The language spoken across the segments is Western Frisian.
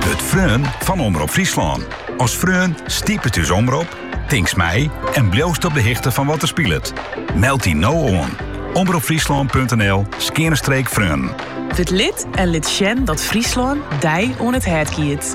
Wurd freon fan Omrop Fryslân. As freon stipet ús omrop, tinkst mei en bliuwst op de hichte fan wat der spilet. Meld dy no oan, omropfryslân.nl skeane streek freon. Wurd lid en lit sjen dat Fryslân dy oan it hert giet.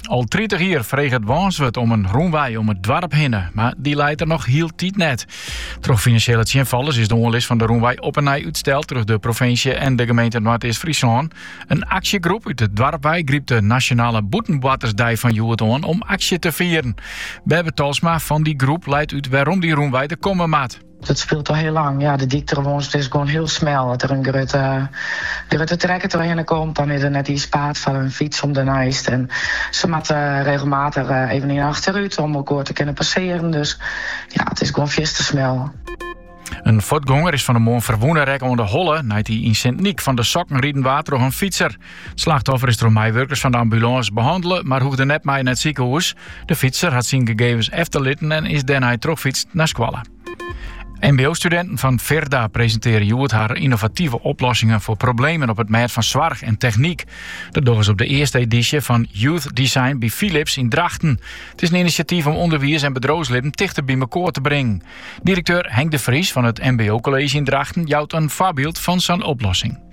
Al tritich jier freget Wânswert om in rûnwei om it doarp hinne, mar dy leit der noch hieltyd net. Troch finansjele tsjinfallers is de oanlis fan de rûnwei op 'e nij útsteld troch de provinsje en de gemeente Noardeast-Fryslân. In aksjegroep út it doarp wei grypt de Nasjonale Bûtenboartersdei fan hjoed oan om aksje te fieren. Berber Talsma fan dy groep leit út wêrom dy rûnwei der komme moat. Dat spilet al hiel lang. Ja, de dyk troch Wânswert is gewoan hiel smel. As der in grutte, grutte trekker trochhinne komt, dan is der net iens paad foar in fyts om derneist. En se moatte regelmatich even yn achterút om elkoar te kinnen passearen. Dus ja, it is gewoan fierste smel. In fuotgonger is fan de moarn ferwûne rekke oan de holle nei't hy yn Sint Nyk fan de sokken riden waard troch in fytser. It slachtoffer is troch meiwurkers fan de ambulânse behannele, mar hoegde net mei nei it sikehûs. De fytser hat syn gegevens efterlitten en is dêrnei trochfytst nei skoalle. MBO-studinten fan Firda presintearje hjoed har ynnovative oplossingen foar problemen op it mêd fan soarch en technyk. Dat dogge se op de earste edysje fan Youth Design by Philips yn Drachten. It is in inisjatyf om ûnderwiis en bedriuwslibben tichter by mekoar te bringen. Direkteur Henk de Vries fan it MBO-kolleezje yn Drachten jout in foarbyld fan sa'n oplossing.